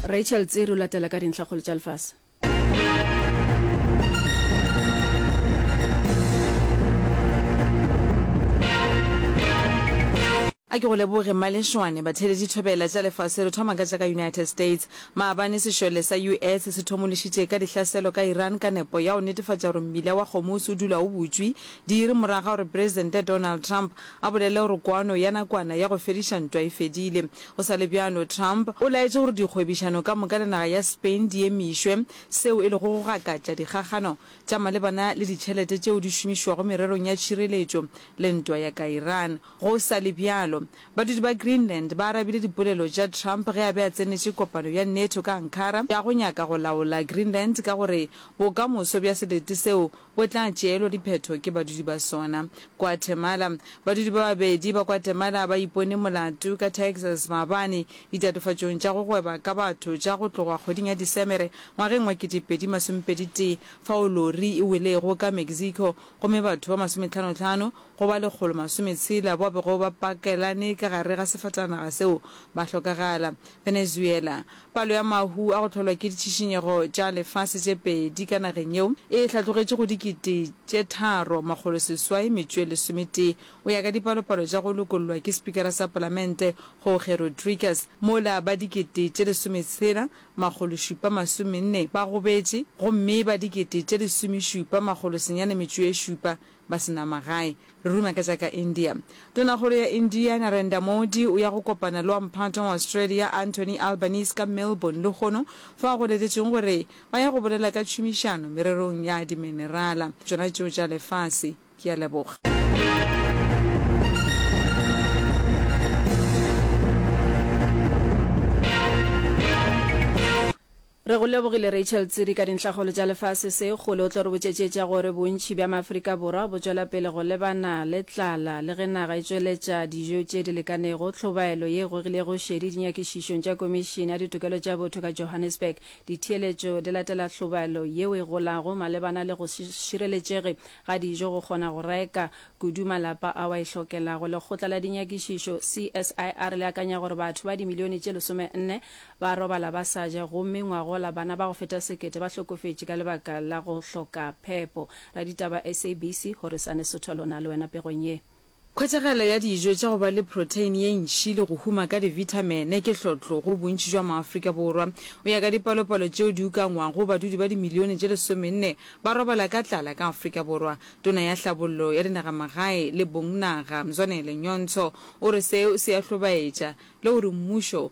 Rachel Tsiri o latela ka dintlhakgolo tša lefase. A ke go leboge Mmalešwane. Batheledi thobela tša lefase re thoma ka tša ka United States. Maabane sešole sa US se thomološitše ka dihlaselo ka Iran ka nepo ya go netefatša gore mmila wa Hormuz o dula o butšwe, diiri morago ga gore Presidente Donald Trump A bolele gore kwano ya nakwana ya go fediša ntwa e fedile. Go sa le bjalo, Trump o laetše gore dikgwebišano ka moka le naga ya Spain di emišwe, seo e lego go gakatša dikgakgano tša malebana le ditšhelete tšeo di šomišwago mererong ya tšhireletšo le ntwa ya ka Iran. Go sa le bjalo, badudi ba Greenland ba arabile dipolelo tša Trump ge a be a tsenetše kopano ya NATO ka Ankara ya go nyaka go laola Greenland ka gore bokamoso bja selete seo bo tla tšeelwa diphetho ke badudi ba sona. Guatemala, Badudi ba babedi ba Guatemala ba ipone molato ka Texas maabane ditatofatšong tša go gweba ka batho tša go tloga kgweding ya Disemere ngwageng wa 2021 fao lori e welego ka Mexico gomme batho ba masometlhanotlhano go ba lekgolo masometshela bao bego ba pakelane ka gare ga sefatanaga seo ba hlokagala. Venezuela, Palo ya mahu a go hlolwa ke ditšhišinyego tša lefase tše pedi ka nageng yeo e hlatlogetše go dikete tše tharo, makgolo seswai metšoe lesometee, go ya ka dipalopalo tša go lokollwa ke Spikara sa Palamente Jorge Rodriguez, mola ba dikete tše lesometshela, makgolo šupa masomenne ba gobetše gomme ba dikete tše lesomešupa, makgolo senyane metšoe šupa Ba se na magae. Re ruma ka tša ka India. Tonakgolo ya India, Narendra Modi, o ya go kopana le wa Mphato wa Australia, Anthony Albanese, ka Melbourne lehono, fao go letetšwego gore ba ya go bolela ka tšhomišano mererong ya diminerala, tšona tšeo tša lefase. Ke a leboga. Re go lebogile Rachel Tsiri ka dintlhakgolo tša lefase se kgole o tlo re botšetšetša gore bontši bja Maafrika Borwa bo tšwela pele go lebana le tlala le ge naga e tšweletša dijo tše di lekanego, tlhobaelo ye e gogilego šedi dinyakišišong tša Komišene ya Ditokelo tša Botho ka Johannesburg. Ditheeletšo di latela tlhobaelo yeo e golago malebana le go se šireletšege ga dijo go kgona go reka kudu malapa ao a e hlokelago. Lekgotla la dinyakišišo CSIR le akanya gore batho ba dimilione tše lesome nne Ba robala ba sa ja gomme ngwagola bana ba go feta sekete ba hlokofetše ka lebaka la go hloka phepo. Raditaba SABC go re Sane Sotho a lona le wena pegong ye. Khwetšagalo ya dijo tša go ba le protein ye ntši le go huma ka divithamene ke hlotlo go bontši jwa maAfrika Borwa. O ya ka dipalopalo tšeo di ukangwago, badudi ba dimilione tše lesomenne ba robala ka tlala ka Afrika Borwa. Tona ya Hlabollo ya Dinagamagae le Bongnaga, Mzwanele Nyonso o re seo se a hlobaetša le gore mmušo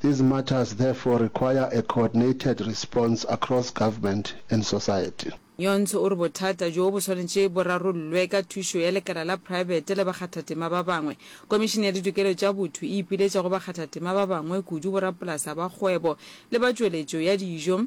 These matters therefore require a coordinated response across government and society. Nyonso o re bothata bjo bo swanetše bo rarollwe ka thušo ya lekala la praebete le bakgathatema ba bangwe. Komišene ya Ditokelo tša Botho e ipiletša go bakgathatema ba bangwe kudu, borapolasa ba kgwebo le ba tšweletšo ya dijo,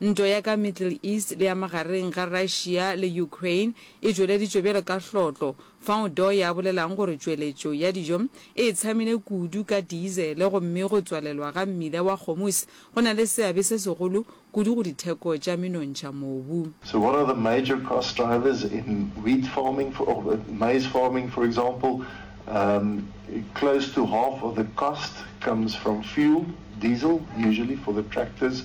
Ntwa ya ka Middle East le ya magareng ga Russia le Ukraine e tšweleditšwe bjalo ka hlotlo fao Doy a bolelago gore tšweletšo ya dijo e tshamile kudu ka diesel gomme go tswalelwa ga mmila wa Hormuz go na le seabe se segolo kudu go ditheko tša menontšha mobu. So what are the major cost drivers in wheat farming for or maize farming for example? Um, close to half of the cost comes from fuel, diesel usually for the tractors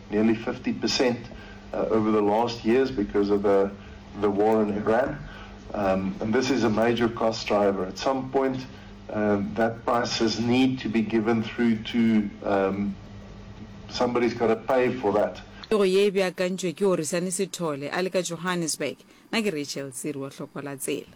nearly 50 percent over the last years because of the war in Iran. And this is a major cost driver. At some point, that prices need to be given through to somebody's got to pay for that. Pego ye e beakantšwe ke Orisani Sithole a le ka Johannesburg. Na ke Rachel Tsiri wa Hlokola Tsela.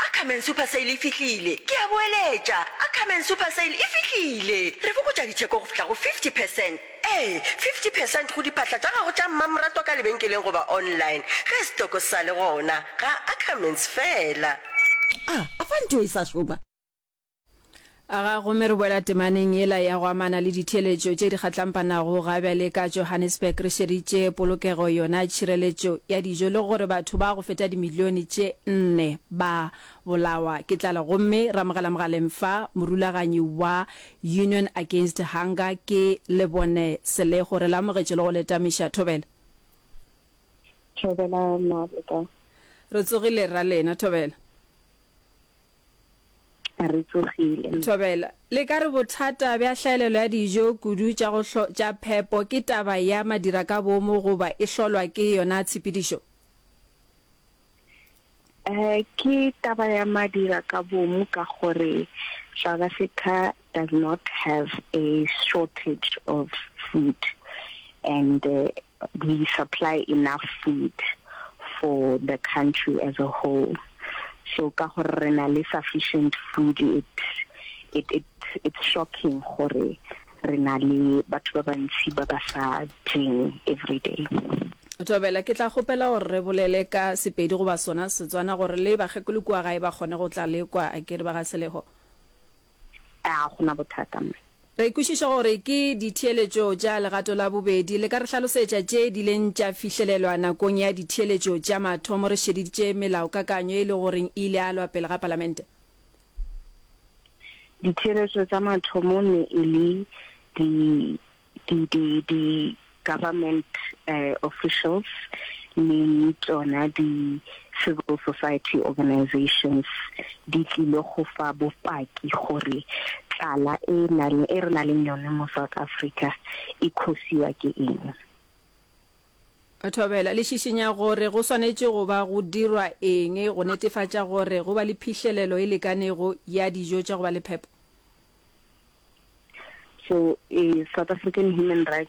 A Come and Super Sale e fihlile! Ke a boeletša, A Come and Super Sale e fihlile! Re fokotša ditheko go fihla go 50 percent, ee, 50 percent go diphahla tša gago tša mmamoratwa ka lebenkeleng goba online ge setoko se sa le gona. Ga Ackermans feela. A A fa ntho e sa šoma? A ga gomme re boela temaneng yela ya go amana le ditheeletšo tše di kgatlampanago ga bjale ka Johannesburg re šeritše polokego yona tšhireletšo ya dijo le gore batho ba go feta dimilione tše nne ba bolawa ke tlala gomme re amogela mogaleng fa morulaganyi wa Union Against Hunger ke Lebone Selego re le amogetše le go le tamiša Thobela Thobela Mabota. Re tsogile rra lena Thobela. a re tsogile. Thobela, Le ka re bothata bja hlaelelo ya dijo kudu tša go hlo tša phepo ke taba ya madira ka boomo goba e hlolwa ke yona tshepedišo? Eh, ke taba ya madira ka boomo ka gore South Africa does not have a shortage of food and uh, we supply enough food for the country as a whole so ka gore re na le sufficient food it it it it's shocking gore re na le batho ba bantsi ba ba sa jeng every day. Thobela, ke tla kgopela gore re bolele ka Sepedi goba sona Setswana gore le bakgekolo kua gae ba kgone go tla le kwa, a ke re ba ga Seleho? A go na bothata mo? Re kwešiša gore ke ditheeletšo tša legato la bobedi. Le ka re hlalosetša tše di leng tša fihlelelwa nakong ya ditheeletšo tša mathomo re šeditše melaokakanyo e le goreng e ile a lwa pele ga Palamente? Ditheeletšo tša mathomo ne e le di. di di di government officials le tšona di civil society organisations di tlile go fa bopaki gore tlala e nale e re na leng yone mo South Africa e khosiwa ke eng. Thobela, le šišinya gore go swanetše go ba go dirwa eng go netefatša gore go ba le phihlelelo e lekanego ya dijo tša go ba le phepo? So, South African Human Rights